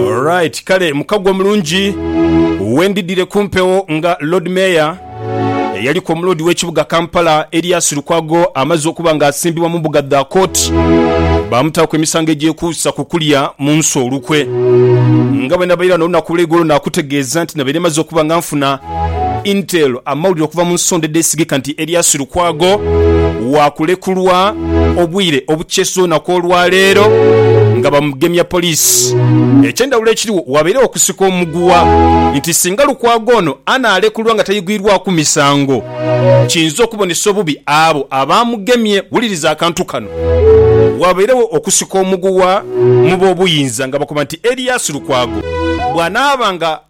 Alright, kale mukago omulungi wendidire kumpewo nga Lord Mayor eyaliku omuloodi w'ekibuga Kampala Erias Lukwago amazze okuba nga asimbibwa mumbuga dha kooti bamutaaku emisango egyekuusa kukulya munsi olukwe nga bwenabaire wano olunaku olweigulo nakutegeeza nti nabaire maze okuba nga nfuna Intel amawulire okuva mu nsonda edheesigika nti Erias Lukwago waakulekulwa obwire obukyesiza olunaku olwaleero nga bamugemya poliisi. Ekyendawulo ekiriwo waabairegho okusika omuguwa nti singa Lukwago ono anaalekulwa nga tayigwirwaku misango, kiyinza okubonesa obubi abo abaamugemye. Wuliriza akantu kano, Waabairegho okusika omuguwa mu b'obuyinza nga bakoba nti Erias Lukwago bw'anaaba nga.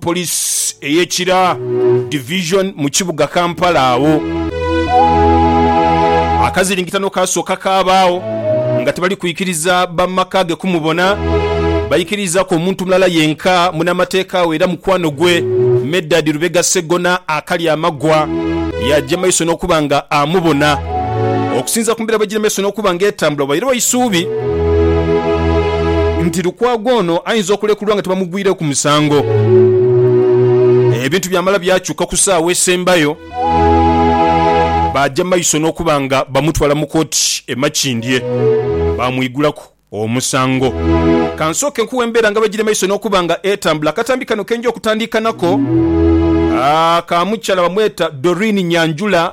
Police eye Kira Division mu kibuga Kampala agho akaziringitano kaasooka kaabaagho nga tibali kwikiriza bamaka ge kumubona. Baikiriizaku omuntu mulala yenka, munamateeka we era mukwano gwe, Medard Lubega Ssegona akalya amagwa yaagya maiso n'okuba nga amubona. Okusinziira ku mbeera bwegiri maiso n'okuba nga etambula, wairawo eisuubi nti Lukwago ono ayinza okulekulwa nga tibamugwira. Tugwire ku musango. Ebintu byamala byakyuka ku saawa esembayo, baaja maiso n'okuba nga bamutwala mu kooti e Makindye baamwigulaku omusango. Ka nsooke nkuwe embeera nga bwegiri maiso n'okuba nga etambula. Akatambi kano kenja okutandiika nako, ka mukyala bamweta Doreen Nyanjula.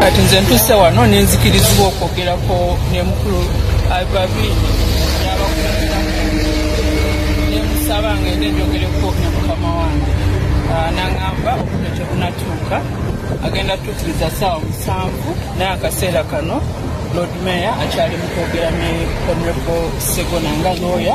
Kati nze ntuuse ghano ni nzikirizibwa okwogerako ni Mukulu Albervine n'abakunzi ba Katonda, ni musaba ng'ende njogereku ni mukama wange. N'angamba obudho tibunatuuka, agenda tuukiriza saawa musanvu, naye akaseera kano Lord Mayor akyali mu kwogera ni Honourable Ssegona nga looya.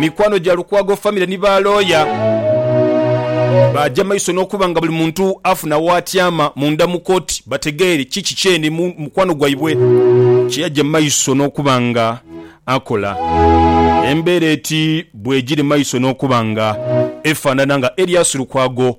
Mikwano gya Lukwago famire ni ba looya baaja mu maiso n'okuba nga buli muntu afuna w'atyama munda mu kooti bategeere ki kiki eno mu mukwano gwaibwe kye yaja mu maiso n'okuba nga akola. Embeera eti bwegiri mu maiso n'okuba nga efaanana nga Erias Lukwago